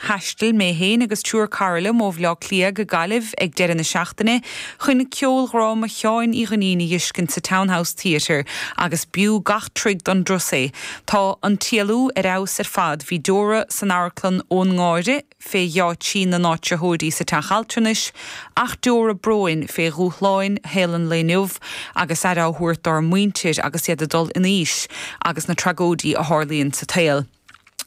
Thaistil mé féin agus triúr cara liom ó Bhaile Átha Cliath go Gaillimh ag deireadh na seachtaine chun ceoldhráma Sheáin Uí Dhuinnín a dh'fheiscint sa Townhouse Theatre agus b'fhiú gach troigh don turas é. Tá An tÉalú ar fheabhas ar fad, bhí deora san amharclann ón ngáire fé gheáitsí na n-áitritheoirí sa teach altranais ach deora bróin fé dhúshláin shaol an lae inniu agus aire á thabhairt dár muintir agus iad ag dul in aois agus na tragóidí a tharlaíonn sa tsaol.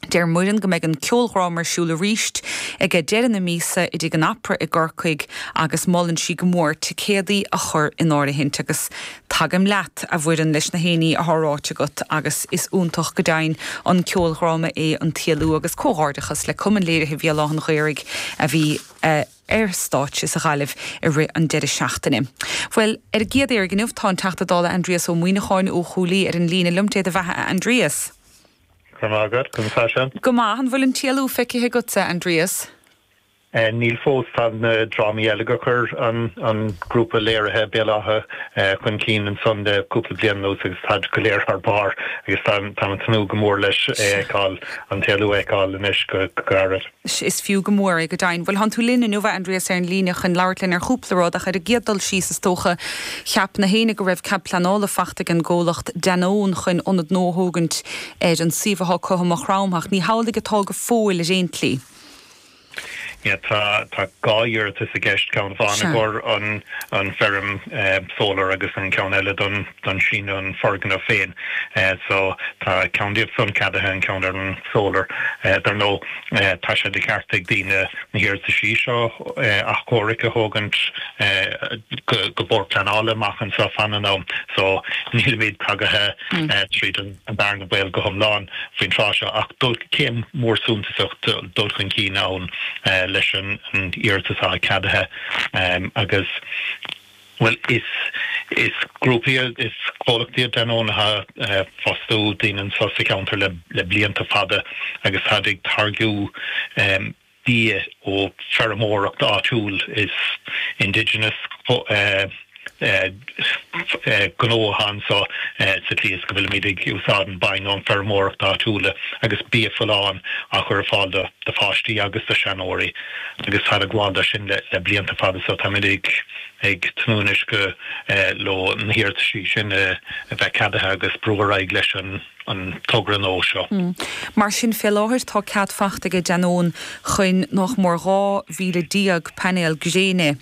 Deir Muireann go mbeidh an ceoldhráma ar siúl arís ag deireadh na míosa i dTigh an Opera i gCorcaigh agus molann sí go mór ticéadaí a chur in áirithint agus tagaim leat, a Mhuireann, leis na héinní athá ráite agat agus is iontach go deimhin an ceoldhráma é An tÉalú agus comhghairdeachas le Cumann Léirithe Bhéal Átha an Ghaorthaidh a bhí ar stáitse sa Ghaillimh i rith an deireadh seachtaine. Bhuel, ar an gcéad mhír inniu, tá an Teachta Dála Aindrias Ó Muíneacháin ó Chúil Aodha ar an líne liom. Dé do bheatha, a Aindrias! Go raibh maith agat, conas tánn sibh? Go maith, an bhfuil An tÉalú feicithe agatsa, Aindrias? Níl fós, tá na drámaí eile gur chuir an grúpa léirithe Béal Átha chun cinn ansan le cúpla bliain anuas agus táid go léir thar barr agus táim ag tnúth go mór leis é a fheiceáil, An tÉalú a fheiceáil anois go gairid. Is is fiú go mór é, go deimhin. Bhuel, thánn tú linn inniu, a Aindrias, ar an líne chun labhairt linn ar chúpla rud, ach ar an gcéad dul síos, is dócha, cheap na héinne go raibh cead pleanála faighte ag an gcomhlacht Danone chun ionad nua a thógaint ar an suíomh atá acu i Maigh Chromtha, ach ní hamhlaidh atá go fóill, ar aon tslí. Yeah, tá, tá dhá iarratas i gceist, ceann amháin i gcomhair an, an feirm, eh, solar agus an ceann eile don, don síneadh an foirgneamh féin so tá ceann díobh san ceadaithe an ceann ar an solar dar ndóigh tá sé de cheart ag daoine na hiarrataisí seo athchomhairc a thógaint go Bord Pleanála amach anseo fan an am so nílimid tagaithe tríd an bearna baoil go hiomlán faoin tráth seo ach dul céim mór suntasach dul chun cinn ann leis an iarratas atá ceadaithe agus. Bhuel, is is grúpa é is comhlacht é Danone athá ag fostú daoine anseo sa cheantar le le blianta fada agus táid ag táirgiú bia ó feirmeoireacht áitiúil is indigenous gnó athá anseo sa tslí is go bhfuilimid ag úsáid an bainne ón feirmeoireacht áitiúla agus bia folláin á chur ar fáil do pháistí agus do sheanóirí. agus táid ag gabháil do sin le blianta fada so táimid ag ag tnúth anois go leo na hiarrataisí sin a bheith ceadaithe agus brú ar aghaidh leis an togra nua seo. Mar sin fé láthair tá cead faighte aige Danone chun nach mór 12,000 painéal gréine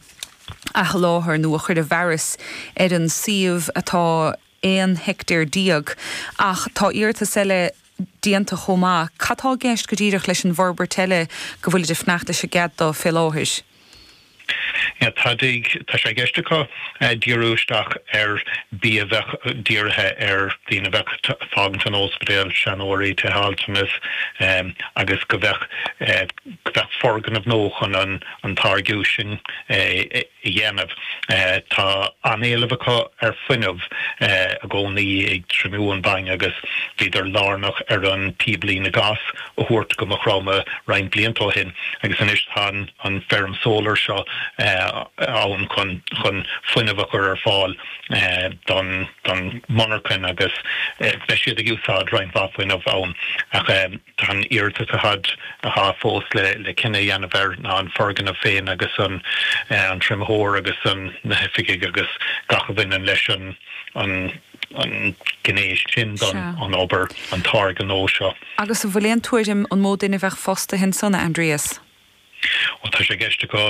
a sholáthar nó a chur i bhfearas ar an suíomh atá 11 heictéar, ach tá iarratas eile déanta chomh maith. Cad tá i gceist go díreach leis an bhforbairt eile go bhfuilid ag fanacht leis an gcead do fé láthair? Tá sé i gceist acu díriú isteach ar bia a bheadh dírithe ar daoine a bheadh ag fágaint an óspidéal, seanóirí, tithe altranais, agus go bheadh go bheadh foirgneamh nua acu chun an táirgiú sin a a dhéanamh. Tá an-éileamh acu ar fuinneamh i gcónaí ag trimiú an bhainne agus bhíodar lárnach ar an bpíoblíne gáis a thabhairt go Maigh Chromtha roinnt blianta ó shin agus anois tá an Feirm Solar seo ann chun fuinneamh a chur ar fáil don mhonarchain agus beidh siad ag úsáid roinnt mhaith fuinneamh ann. Tá an iarratas atá fós le cinneadh a dhéanamh air ná an foirgneamh féin agus an triomitheoir agus na hoifigí agus gach a bhaineann leis an ghné sin den obair, an táirge nua seo. Agus an bhfuil aon tuairim an mó duine a bheadh fostaithe ansan, a Aindrias? Bhuel, tá sé i gceist acu,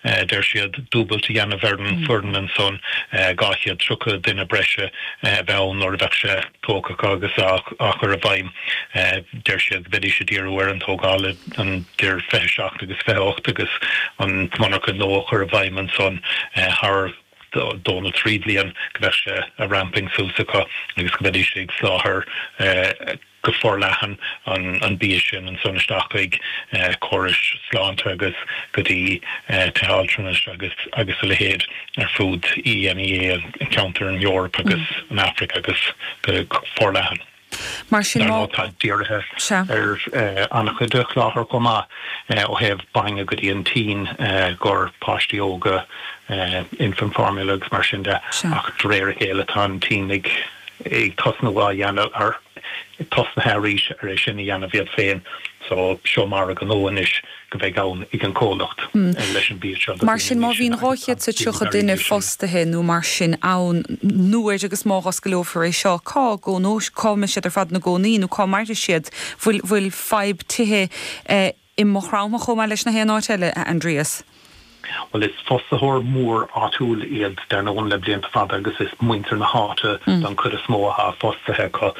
a deir siad, dúbailt a dhéanamh ar an bhfoireann ansan, dhá chéad tríocha duine breise a bheith ann nuair a bheadh sé tógtha acu agus á chur i bhfeidhm. Deir siad go bheidís ag díriú ar an tógáil idir fiche seacht agus fiche ocht agus an mhonarcha nua a chur i bhfeidhm ansan thar dó nó trí bhliain go mbeadh sé ag ramping suas acu agus go mbeidís ag soláthar go forleathan an bia sin ansan isteach chuig córais sláinte agus go dtí tithe altranais agus a leithéid ar fud EMEA, an ceantar, an Eoraip agus an Afraic agus go forleathan. Tá siad dírithe ar an-chuid de sholáthar chomh maith ó thaobh bainne go dtí an tSín i gcomhair, páistí óga, infant formula agus mar sin de, ach de réir a chéile tá an tSín ag. ag tosnú á dhéanamh, ar tosnaithe arís ar é sin a dhéanamh iad féin so seo margadh nua anois go bheidh ann ag an comhlacht leis an bia seo. Mar sin, má bhíonn 230 duine fostaithe nó mar sin ann, nuair agus má dh'osclófar é seo, cá gcónóidh, cá mbeidh siad ar fad ina gcónaí nó cá mairfidh siad? Bhfuil, bhfuil fadhb tithe eh. i Maigh Chromtha chomh maith le nach aon áit eile, a Aindrias. Bhuel, is fostaitheoir mór áitiúil iad, dar ndóigh, le blianta fada agus is muintir na háite den chuid is mó atá fostaithe acu.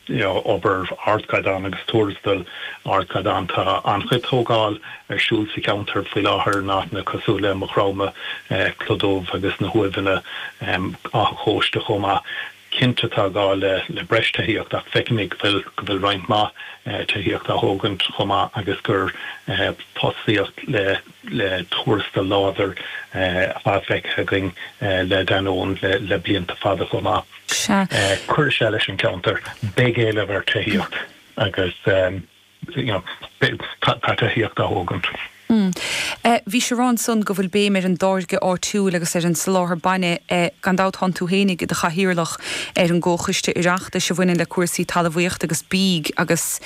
Obair ardchaighdeáin agus tuarastal ardchaighdeáin. Tá an-chuid tógáil ar siúl sa cheantar faoi láthair in áiteanna cosúil le Maigh Chromtha, Cloch Dhubh agus na hUaimheanna, Áth an Chóiste chomh maith. Cinnte tá gá le breis tithíocht ach feicimid go bhfuil roinnt mhaith tithíocht á thógaint chomh maith agus gur fostaíocht le tuarastal láidir atá feicthe againn le Danone le blianta fada chomh maith. Cuirfidh sé leis an gceantar. Beidh éileamh ar tithíocht agus. tithíocht a thógaint. Bhíosar ansan go bhfuil béim ar an dtáirgeadh áitiúil agus ar an soláthar bainne. Gan dabht tánn tú féinig i do chathaoirleach ar an gcomhchoiste Oireachtais a bhaineann le cúrsaí talamhaíochta agus bídh agus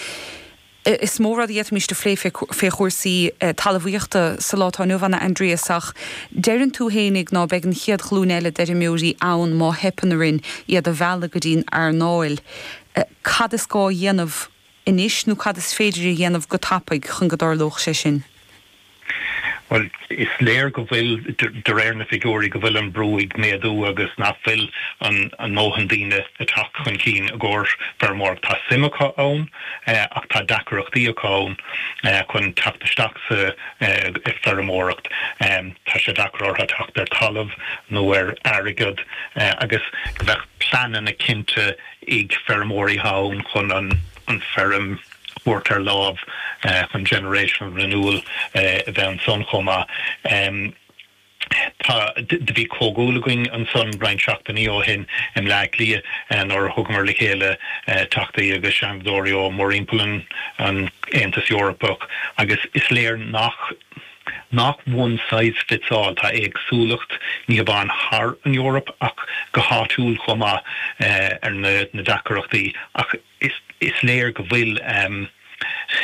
is mó rud a d'fhéadfaimis a phlé fé chúrsaí talamhaíochta sa lá atá inniu ann a Aindrias ach deireann tú féinig ná beidh an chéad ghlúin eile d'fheirmeoirí ann má theipeann orainn iad a mhealladh go dtí'n earnáil. Cad is gá a dhéanamh? anois nó cad is féidir a dhéanamh go tapaidh chun go dtarlódh sé sin? Bhuel, is léir go bhfuil, de réir na figiúirí, go bhfuil an brú ag méadú agus nach bhfuil an ndóthain daoine ag teacht chun cinn i gcomhair feirmeoireacht. Tá suim acu ann ach tá deacaireachtaí acu ann chun teacht isteach sa feirmeoireacht. Tá sé deacair orthu teacht ar talamh nó ar airgead agus go mbeadh pleananna cinnte ag feirmeoirí ann chun an feirm a thabhairt ar láimh chun generational renewal a bheith ansan chomh maith. Tá, do bhí comhdháil againn ansan roinnt seachtainí ó shin i mBleá Cliath nuair a thugamar le chéile Teachtaí agus Seanadóirí ó mórthimpeall an Aontas Eorpach agus is léir nach. nach 'one size fits all'. Tá éagsúlacht ní hamháin thar an Eoraip ach go háitiúil chomh maith ar na deacaireachtaí ach is léir go bhfuil.